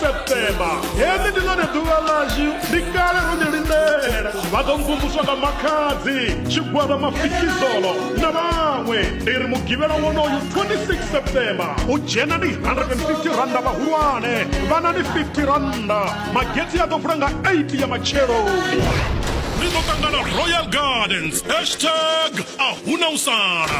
septemba heḽi ndi ḽone ḓuvha ḽashu ndi kale ro ḽi lindela vha ḓo mvumvuswa nga makhadzi tshigwada mafikizolo na vhaṅwe ndi ri mugivhela wonoyu 26 septemba u dzhena ndi 150 randa vhahulwane vhana ndi 50 randa magetsi a ḓo vula nga 8 ya matsheloni ri ḓo ṱangana royal gardens hashtag a huna u sala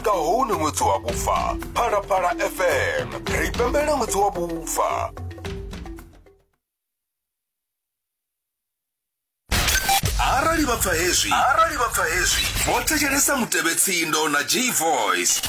nga hone ṅwedzi wa vhufa phalaphala fm ri pembela ṅwedzi wa vhufa arali vha pfa hezwi arali vha pfa hezwi vho thetshelesa mutevhetsindo na g voice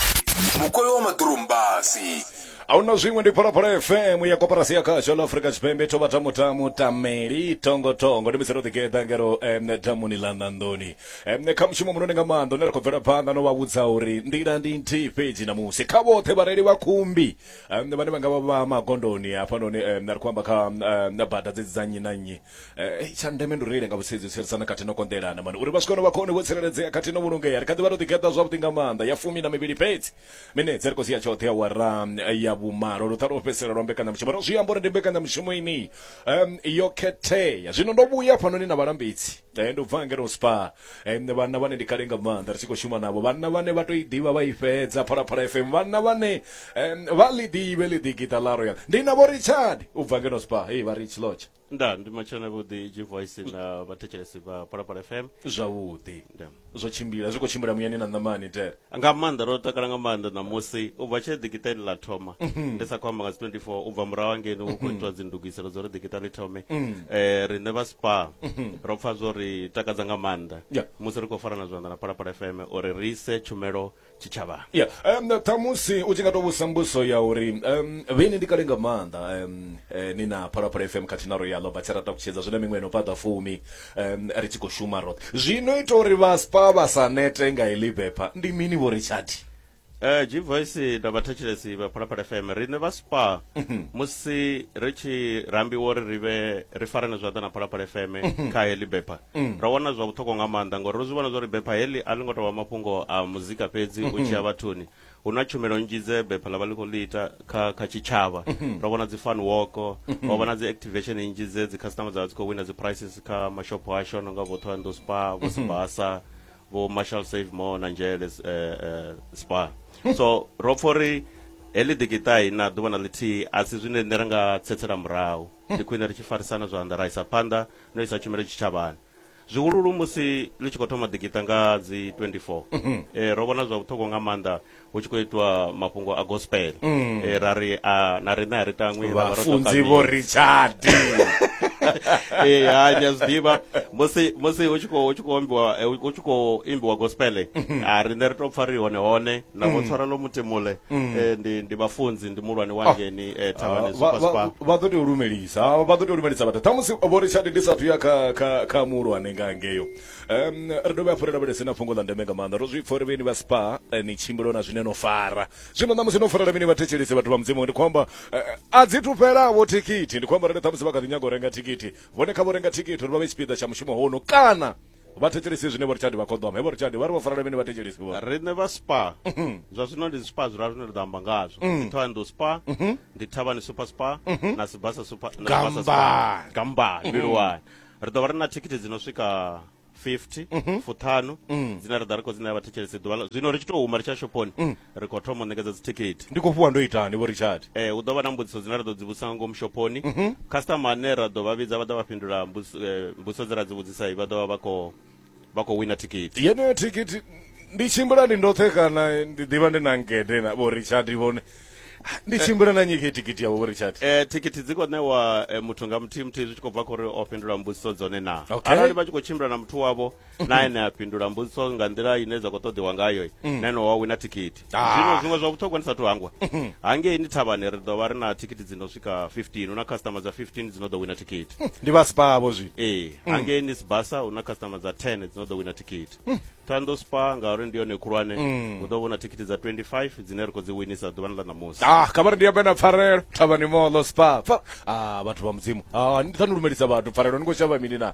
mukoyo wa maḓurumbasi ahuna zwiṅwe ndi phalaphala fm ya koporasi ya khasho la afrika tshipembe tho vha tamutamu tameli tongotongo ndi misero ḓigeḓa ngero em damuni ḽa ṋanḓoni nṋe kha mushumo munoni nga maanḓa une ra khou bvela phanḓa no vha vhudza uri nḓila ndi nthihi fhedzi ṋamusi kha vhoṱhe vhareili vha khumbi vhane vha nga vha vha magondoni hafhanoni na ri khou amba kha bada dzedzi dza nnyi na nnyi tsha ndeme ndi u reile nga vhusedzi u tsireledzana khathihi no konḓelana mani uri vha swike hone vha khone vho tsireledzea khathihi no vhulungea ri kha ḓi vha ro ḓigeḓa zwavhuḓi nga maanḓa ya fumi na mivhili fhedzi minetse ri khou sia tshoṱhe awara ya vhumalo luṱha lwo fhedzisela lwa mbekanyamushumo ro zwi amba uri ndi mbekanyamushumo ini yo khethea zwino ndo vhuya hafhanoni na vhalambedzi Eh, ndo bva ngeno spa eh, nṋe vhanna vhane ndi kale nga maanḓa ri tshi khou shuma navho vhanna vhane vha to i ḓivha vha i fhedza phalaphala fm vhanna vhane em, vha ḽi ḓivhe ḽi ḓi gita ḽa royal ndi navho richard u bva ngeno spa hei vha rich lodge nda ndi matshelo na vhuḓi g voice na vhathetshelesi vha phalaphala fm zwavhuḓi Nda. zwo tshimbila zwi khou tshimbila muyani na ṋamani tere nga maanḓa ro takala nga maanḓa ṋamusi u bva tshee ḓikitani ḽa thoma mhm. ndi sa khou amba nga dzi 24 u bva murahu angeni hu khou mhm. itiwa dzindugiselo dza uri ḓikita ḽi thome mhm. eh, riṋe vha spa ro pfa zwo ri takadza nga maanḓa musi ri khou farana zwanḓa na phalaphala fm uri ri ise tshumelo tshitshavhani ya um, ṱhamusi u tshi nga to vhusa mbuso ya uri um, vheni ndi kale nga maanḓa um, eh, ni na phalaphala fm khathihi na royalo vha tshi rata kutshedza zwine miṅwe no fhaṱa fumi um, ri tshi khou shuma roṱhe zwino ita uri vhaspa vha sa nete nga heḽi bepha ndi mini vho ri tshati Eh G Voice na vhathetshelesi vha Phalaphala FM riṋe vha Spa musi ri tshi rambiwa uri ri vhe ri farane zwanḓa na Phalaphala FM kha heḽi bepha mm. ra wana zwa vhuṱhogwa nga maanḓa ngori ro zwi vhona zwori bepha heḽi a ḽi ngo tovha mafhungo a muzika fhedzi mm -hmm. u tshiya vhathuni hu na tshumelo nnzhi dze bepha ḽa vha ḽi khou ḽi ita kha kha tshitshavha mm -hmm. ro vhona dzi fan walk mm -hmm. ro vhona dzi activation nnzhi dze dzi customer dza vha dzi khou wina dzi prices kha mashopho asho no nga vho thohoyando spa vho mhm. sibasa vho marshal save more na nzhele uh, eh, uh, eh, spa mhm. so ro pfa uri heḽi ḓikitai na ḓuvha na ḽithihi a si zwine nṋe ra nga tsetsela murahu ndi khwine ri tshi farisana zwanḓa ra isa phanḓa no isa tshumelo tshitshavhani zwihululu musi ḽi tshi khou thoma ḓikiṱa nga dzi 24 mhm. eh, ro vhona zwa vhuṱhogwa nga maanḓa hu tshi khou itwa mafhungo a gospel mm. eh, ra ri a na riṋe a ri tangwi vhafunzi vho richard ee ha nya zwiḓivha musi musi hu tshi khou hu tshi khou ambiwa eh, hu tshi khou imbiwa gospel mhm. a riṋe ri tou pfha ri hone hone na vho tshwarelo mutemule eh, ndi ndi vhafunzi ndi mulwane wa ngeni eh, thavhani Vha- vha- superspar vha ḓo tea u lumelisa Ah, vha ḓo tea u lumelisa vhathu ṱhamusi vho richard ndi sathu ya kha kha kha muhulwane nga ngeyo um ri dovhe hafhu ri lavhelese na fhungo ḽa ndeme nga maanḓa ro zwi pfa uri vheni vha spa eh, ni tshimbilo na zwine no fara zwino ṋamusi no farela mini vhathetshelesi vhathu vha mudzimu ndi khou amba eh, a dzi thu fhelavho thikhithi ndi khou amba rali ṱhamusi vha kha ḓi nyaga u renga thikhithi vhone kha vho renga thikhithi uri vha vhe tshipiḓa tsha mushumo hono kana vha thetshelesi zwine vho richard vha khoḓoma hevho richard vha ri vho farela mini vha thetshelesi vho riṋe vha spa mhm. zwa zwino ndi spa zwiraru zwine ri ḓo amba ngazwo mhm. ndi thohoyandou spa mhm. ndi thavhani super spa na sibasa super gamba mbiluwani ri ḓo vha ri na thikhithi dzi no swika 50 fuṱhanu dzine ra ḓa ri khou dzi ṋea vhathetshelesi ḓuvha zwino ri tshi tou huma ri tsha shophoni ri khou thoma u ṋekedza dzithikhithi ndi khou fhiwa ndo itani vho richard eh hu ḓo vha na mbudziso dzine ra ḓo dzi vhudzisa nga ngomu shophoni mhm. customer ane ra ḓo vha vhidza vha ḓo vha fhindula mbudziso eh, mbudziso dze ra dzi vhudzisa vha ḓo vha vha khou vha khou wina thikhithi yeneyo thikhithi ndi tshimbila ndi ndoṱhe kana ndi ḓivha ndi na ngede na vho richard vhone ndi eh. tshimbila na nyike thikhithi yavho vho richard eh thikhithi dzi khou ṋewa eh, muthu nga muthihi muthihi zwi tshi khou bva khori o fhindula mbudziso dzone na arali vha tshi khou tshimbila na muthu wavho na ene a fhindula mbudziso nga nḓila ine dza khou ṱoḓiwa ngayo na ene wa wina thikhithi Ah. zwino zwiṅwe zwa vhuṱhogwa ndi sathu hangwa hangei ni thavhani ri ḓo vha ri na thikhithi dzi no swika 15 hu na customer dza 15 dzi no ḓo wina thikhithi ndi vha sipavho zwi ee hangei ni sibasa hu na customer dza 10 dzi no ḓo wina thikhithi thando spa ngauri ndi yone khulwane hu ḓo vhona thikhithi dza 25 dzine ri khou dzi winisa ḓuvhani ḽa ṋamusi ah kamari ndi ambe na pfarelo thavhani molo spa Pfa- ah vhathu vha mudzimu ah ni thani lumelisa vhathu pfarelo ni khou shavha mini na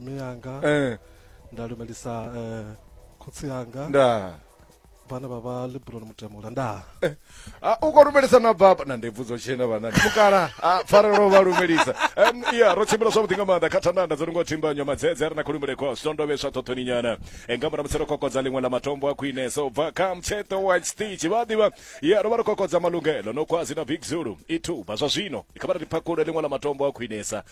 mme yanga eh nda lumelisa eh, khotsi yanga nda vhana vha vha libroni mutemula nda Eh, ah, u khou lumelisa na baba na ndebvu dzo tshena vhanani mukala a pfarelo vha lumelisa Em, ya ro tshimbila zwavhuḓi nga maanḓa kha thandanda dzo lingo thimbanyo madzedze a re na khulumbule kwa switondovheswa ṱhoṱhoni nyana Eh, nga murahu musi ro kokodza ḽiṅwe ḽa matombo a khwinesa u bva kha mtsheṱo wa stitch vha ḓivha ya ro vha ro kokodza malungelo no kwazi na big zulu i thuba zwa zwino kha vha ri phakhule ḽiṅwe ḽa matombo a khwinesa